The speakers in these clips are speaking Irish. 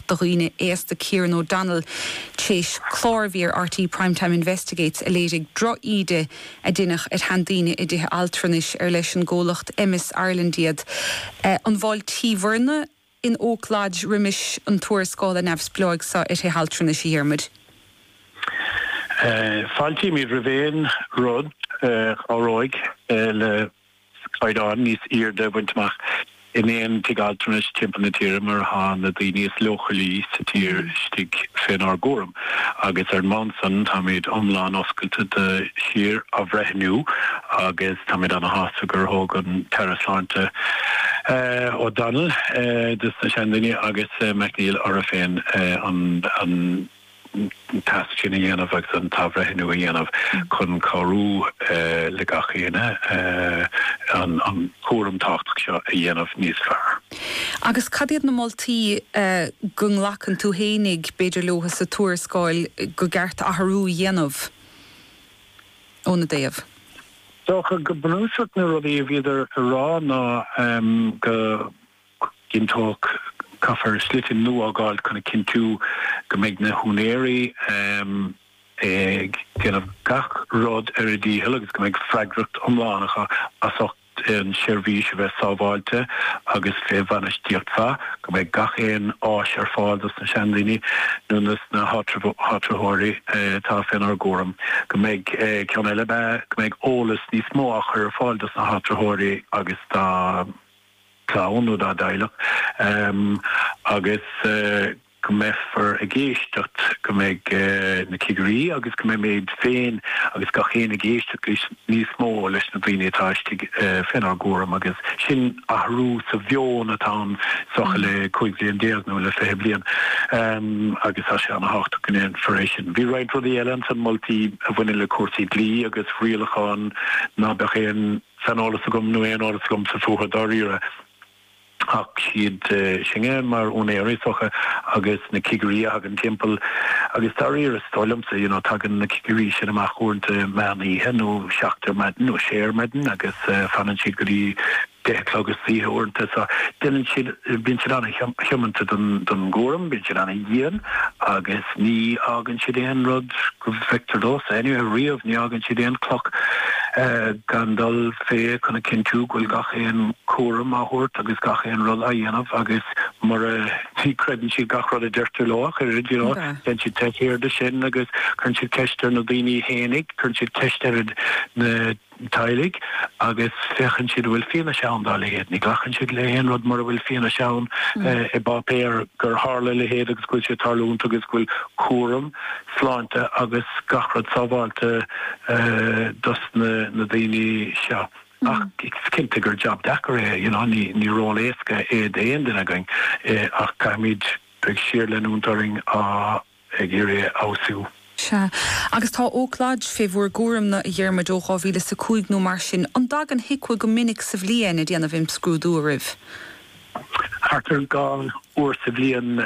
do dhaoine aosta Kieran O'Donnell téis clár a bhí ar RTÉ Primetime Investigates a léirigh droch-íde a deineadh ar sheandaoine i dtithe altranais ar leis an gcomhlacht Emeis Ireland iad an bhfáiltíobhair-na in Oaklodge roimis an tuarascála neamhspleáigh seo ar thithe altranais a Dhiarmuid. Fáiltímid roimh aon rud a chabhróidh le caighdeán níos airde a bhaint amach in aon tigh altranais timpeall na tíre, mar atá na daoine is leochailí sa tír istigh fénár gcúram, agus ar an mbonn san táimid iomlán oscailte do shíorathbhreithniú agus táimid ana shásta gur thóg an tAire Sláinte O'Donnell dos na seandaoine agus MacNeill orra féin an an tasc sin a dhéanamh agus an t-athbhreithniú a dhéanamh chun cabhrú le gach éinne an cúram tábhachtach seo a dhéanamh níos fearr. Agus cad iad na moltaí go nglacann tú fhéinig, b'fhéidir, leo sa tuarascáil gur ceart athrú a dhéanamh ina dtaobh? Is dócha go bunúsach na rudaí a bhíodar a rá ná go. gcinnteoidh. Caithfear slite nua a dh'fháilt chun a chinntiú go mbeidh na húinéirí ag déanamh gach rud ar a ndícheall agus go mbeidh freagracht iomlán acu as ucht an seirbhís a bheith sábháilte agus fé bhainistíocht mhaith, go mbeidh gach aon áis ar fáil dos na seandaoine nó dos na háitritheoirí atá fénár gcúram, go mbeidh. Ceann eile ab ea go mbeidh eolas níos mó á chur ar fáil dos na háitritheoirí agus dá. gclann nó dá dteaghlach agus go mbeifear ag éisteacht, go mbeidh na cigirí agus go mbeimid féin agus gach éinne ag éisteacht níos mó leis na daoine atá istigh fénár gcúram agus sin athrú sa mheon atá ann is dócha le 15 bliain nó le 20 bliain agus tá sé an-thábhachtach go ndéanfar é sin. Bhí roinnt rudaí eile ansan, moltaí a bhaineann le cúrsaí dlí agus rialacháin, ná beadh aon. saineolas agam nó aon eolas agamsa fúthu dáiríre ach is iad sinn féin mar úinéirí is dócha agus na cigirí a thagann timpeall agus dáiríre is dóigh liomsa you know tagann na cigirí sin amach uaireanta meán oíche nó seacht ar maidin nó sé ar maidin agus fanann siad go dtí deich a chlog istoíche uaireanta so déanann siad bíonn siad an-thiomanta don gcúram bíonn siad an-dhian agus Ní fhágann siad aon rud, go bhfeictear domhsa anois, riamh, ní fhágann siad aon chloch gan dul fé chun a chinntiú go bhfuil gach aon chúram á thabhairt agus gach aon rud á dhéanamh agus mura gcreideann siad gach rud a deirtear leo ach oiread, you know, téann siad taobh thiar de sin agus cuireann siad ceist ar na daoine fhéinig, cuireann siad ceist ar na. teaghlaigh agus féachann siad an bhfuil fianaise ann dá leithéid. Ní ghlacann siad le haon rud mura bhfuil fianaise ann i bpáipéar gur tharla a leithéid agus go bhfuil sé ag tarlúint agus go bhfuil cúram sláinte agus gach rud sábháilte dos na daoine seo. Ach is cinnte gur jab deacair é, you know, ní ról éasca é seo d'aon duine againn ach caithfimid bheith de shíor ag leanúint orainn á. ag iarraidh a fheabhsú. Sea. Agus tá Ocklodge fé bhur gcúram-na, a Dhiarmuid, ó dhá mhíle is a cúig nó mar sin. An dtagann HIQA go minic sa bhliain ag déanamh imscrúdú oraibh? Thart ar dhá uair sa bhliain,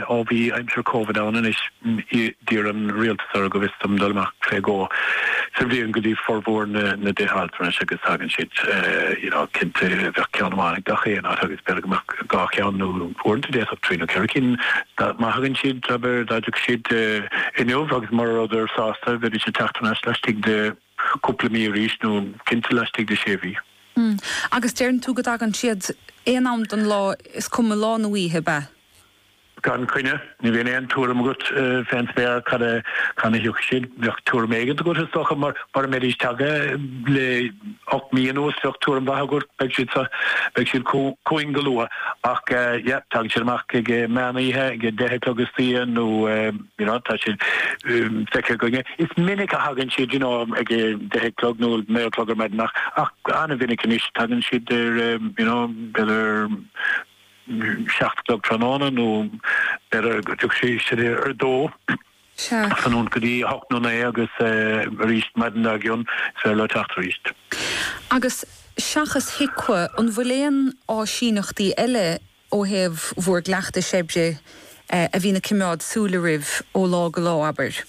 ó bhí aimsir Covid ann. Anois, d'iarr an rialtas orthu, go bhfios dom, dul amach fé dhó sa bhliain go dtí formhór na dtithe altranais agus tagann siad, you know, cinnte, bheadh ceann amháin ag gach aon áit. B'fhéidir go mbeadh dhá cheann nó uaireanta d'fhéadfadh trí nó ceithre cinn má thagann siad abair dá dtiocfadh siad inniu agus mura rabhadar sásta bheidís ag teacht thar n-ais laistigh de chúpla mí arís nó cinnte laistigh de sé mhí. Hm, agus deireann tú go dtagann siad aon am den lá, is cuma lá nó oíche ab ea? Gan choinne, ní bhíonn aon tuairim agat fén spéir cathain a thiocfaidh siad. Bheadh tuairim éigin agat is dócha mar, mura mbeidís tagtha le hocht mí anuas, bheadh tuairim mhaith agat, beidh siad sa, beidh siad chugainn go luath. Ach yeah, tagann siad amach ag meán oíche, ag a deich a chlog istoíche nó you know, tá siad feicthe againne. Is minic a thagann siad you know ag a deich a chlog nó naoi a chlog ar maidin ach, ach an-mhinic anois tagann siad ar you know ar, seacht a chlog tráthnóna nó ar a dtiocfaidís isteach ar a dó san iarnóin go dtí a hocht nó naoi agus arís maidin dár gcionn is féidir leo teacht arís. Agus seachas HIQA, an bhfuil aon áisíneachtaí eile ó thaobh bhur gcleachtais oibre a bhíonn ag coimeád súile oraibh ó lá go lá, abair?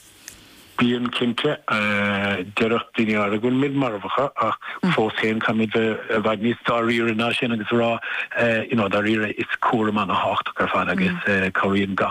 Bíonn, cinnte. Déarfadh daoine áirithe go bhfuil muid marbh acu ach fós féin caithfimid bheith i bhfad níos dáiríre ná sin agus a rá, you know, dáiríre is cúram ana-thábhachtach ar fad agus cabhraíonn gach